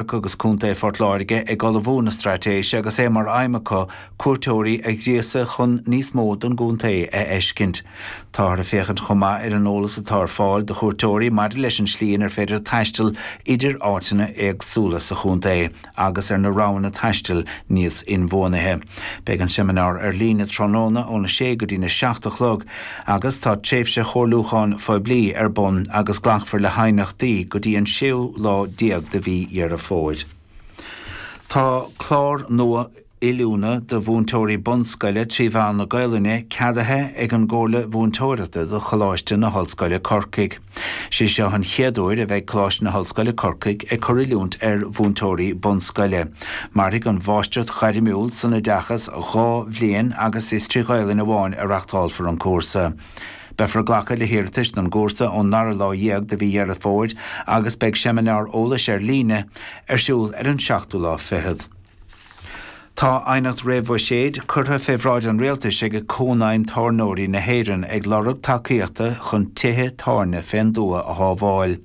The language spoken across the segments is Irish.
Cathrach agus Contae Phort Láirge ag ullmhú na straitéise agus é mar aidhm acu cuairteoirí a ghríosadh chun níos mó den gcontae a fheiscint. Táthar ag féachaint chomh maith ar an eolas atá ar fáil do chuairteoirí maidir leis an slí inar féidir taisteal idir áiteanna éagsúla sa chontae agus ar na roghanna taistil níos inbhuanaithe. Beidh an seimineár ar líne tráthnóna óna 6 go dtína 7 a chlog. agus tá tréimhse chomhairliúcháin phoiblí ar bun agus glacfar le haighneachtaí go dtí an séú lá déag de mhí Dheireadh Fómhair. Tá clár nua oiliúna do mhúinteoirí bunscoile trí mheán na Gaolainne ceadaithe ag an gComhairle Mhúinteoireachta do Choláiste na hOllscoile Corcaigh. Is é seo an chéad uair a bheidh Coláiste na hOllscoile Corcaigh ag cur oiliúint ar mhúinteoirí bunscoile. Mairfidh an Mháistreacht Ghairmiúil san Oideachas dhá bhliain agus is trí Ghaolainn amháin a reachtálfar an cúrsa. Beifear ag glacadh le hiarratais don gcúrsa ón ndara lá dhéag de mhí Dheireadh Fómhair agus beidh seimineár eolais ar líne ar siúl ar an seachtú lá fichead. Tá aighneacht réamhbhuiséid curtha fé bhráid an Rialtais ag Cónaidhm Tábhairneoirí na hÉireann ag lorg tacaíochta chun tithe tábhairne fén dtuath a shábháil.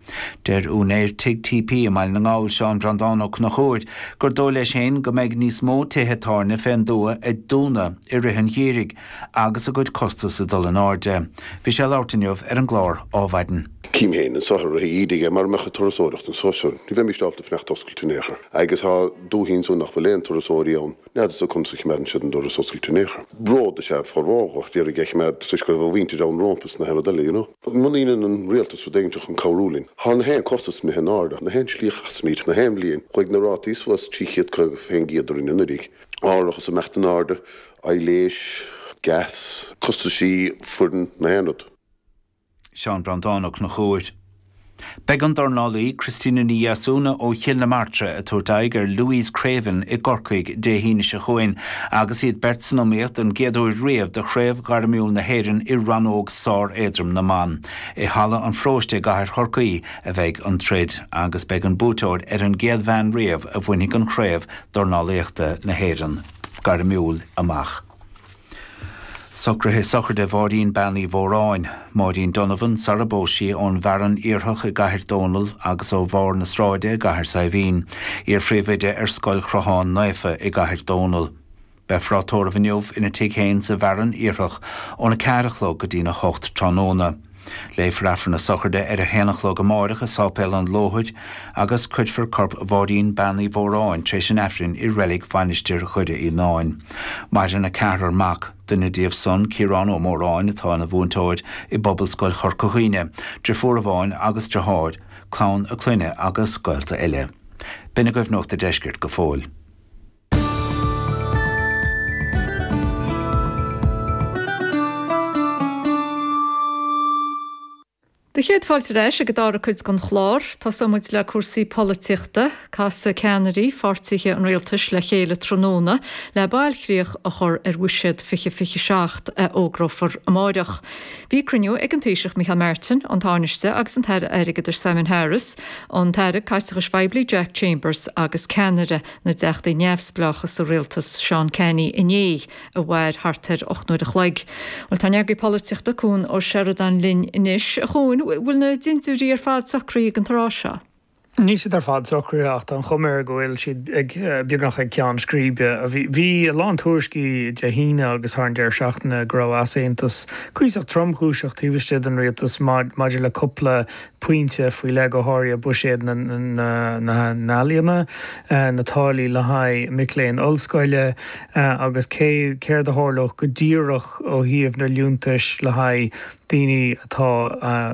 Deir úinéir Tigh TP i mBaile na nGall, Seán Breandán Ó Conchúir, gur dóigh leis féin go mbeidh níos mó tithe tábhairne fén dtuath ag dúnadh i rith an gheimhridh agus a gcuid costas ag dul in airde. Bhí sé ag labhairt inniu ar an gclár Ádhmhaidin. Cím féin anso thiar a bheith ag íde aige mara mbeadh an turasóireacht anso. Ní bheimíst ábalta fanacht oscailte in aon chor. Agus tá. dúichí ansan nach bhfuil aon turasóirí ann, n'fheadarsa conas a chimeádann siad an doras oscailte in aon chor. Bród is ea formhór dó, a d'iarraidh é a chimeád toisc go raibh a mhuíntir ann rómpa is na haon rud eile, you know. Muna ndeineann an Rialtas rud éiginteach chun cabhrú linn, thá na haon costas imithe in airde, na haon slí a chasaimíd, na haon bhliain, chuaigh na rátaí suas trí chéad caoga fén gcéad orainn anuraidh, árachas ag imeacht in airde, aibhléis, gas, costaisí, foireann, na haon rud. Seán Breandán Ó Conchúir. Beidh an dornálaí Christina Ní Dheasúna ó Chill na Martra ag tabhairt aghaidh ar Louise Creaven i gCorcaigh Dé hAoine seo chugainn agus iad beirt san iomaíocht don gcéad uair riamh do Chraobh Ghairmiúil na hÉireann i rannóg sár-éadrom na mban. I Halla an Pharóiste i gcathair Chorcaí a bheidh an troid agus beidh an buaiteoir ar an gcéad bhean riamh a bhainfidh an chraobh dornálaíochta na hÉireann gairmiúil amach. Socruithe sochraide Mháirín Bean Uí Mhóráin, Máirín Donovan, sara bpós sí, ón bhFearann Iarthach i gCathair Dónall agus ó Bharr na Sráide i gCathair Saidhbhín, iarphríomhoide ar Scoil Chrochán Naofa i gCathair Dónall. Beifear á tórramh inniu ina tigh féin sa bhFearann Iarthach óna ceathair a chlog go dtína hocht tráthnóna. Léifear Aifreann na Sochraide ar a haon a chlog amáireach i Sáipéal an Lóthair agus cuirfear corp Mháirín Bean Uí Mhóráin tar éis an Aifrinn i reilig Mhainistir Dhoire Fhíonáin. Maireann a ceathrar mac, duine díobh san, Ciarán Ó Móráin, atá ina mhúinteoir i bPobalscoil Chorca Dhuibhne, driofúr amháin agus driotháir, clann a clainne agus gaolta eile. B'in agaibh Nuacht an Deiscirt go fóill. Do chéad fáilte ar ais ag an dára cuid den chlár. Tosóidh muid le cúrsaí polaitíochta. Casfaidh ceannairí pháirtithe an rialtais le chéile tráthnóna le bailchríoch a chur ar Bhuiséad 2027 a fhógrófar amáireach. Bhí cruinniú ag an Taoiseach Micheál Martin, an Tánaiste agus an tAire Airgeadais Simon Harris, an tAire Caiteachais Phoiblí Jack Chambers agus ceannaire na dTeachtaí Neamhspleácha sa rialtas, Seán Canney, inné, a mhair thart ar ocht n-uair a chloig. Bhuel, tá ár n-eagraí polaitíochta, Cuan Ó Seireadáin, linn anois. A Chuain, bhfuil na dintiúirí ar fad socraithe ag an tráth seo? Níl siad ar fad socraithe ach tá an chuma air go bhfuil siad beagnach ag ceann scríbe. Bhí a lán tuairiscí Dé hAoine agus thar an deireadh seachtaine go raibh easaontas cuíosach tromchúiseach taobh istigh den rialtas maidir le cúpla pointe faoi leith go háirithe buiséad na n-ealaíona, na táillí le haghaidh mic léinn ollscoile agus cé céard a tharlódh go díreach ó thaobh na liúntais le haghaidh daoine atá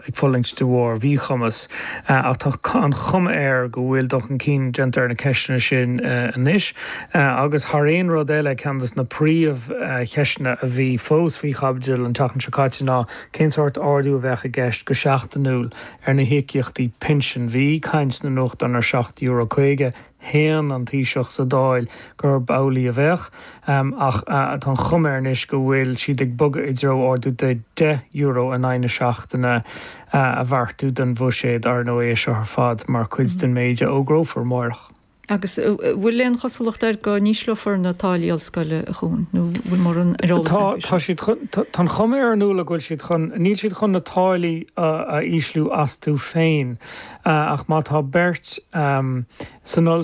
ag fulaingt de bharr mhíchumas. Ach tá an chuma air go bhfuil dul chun cinn déanta ar na ceisteanna sin anois agus, thar aon rud eile, ceann de na príomhcheisteanna a bhí fós faoi chaibidil an tseachtain seo caite ná Cén sórt ardú a bheadh i gceist go seachtainiúil ar na híocaíochtaí pinsin? Bhí caint sna nuachtáin ar seacht euro caoga. Shéan an Taoiseach sa Dáil gurb amhlaidh a bheadh, ach tá an chuma air anois go bhfuil siad ag bogadh i dtreo ardú de deich euro in aghaidh na seachtaine a bheartú don Bhuiséad. Ar ndóigh, é seo ar fad mar chuid den méid a fhógrófar amárach. Agus bhfuil aon chosúlacht air go n-ísleofar na táillí ollscoile, a Chuain, nó bhfuil mórán ar eolas air faoi sin? Tá, tá an chuma air, a Fhionnuala, go bhfuil siad chun, níl siad chun na táillí a ísliú astu féin ach má tá beirt san ollscoil,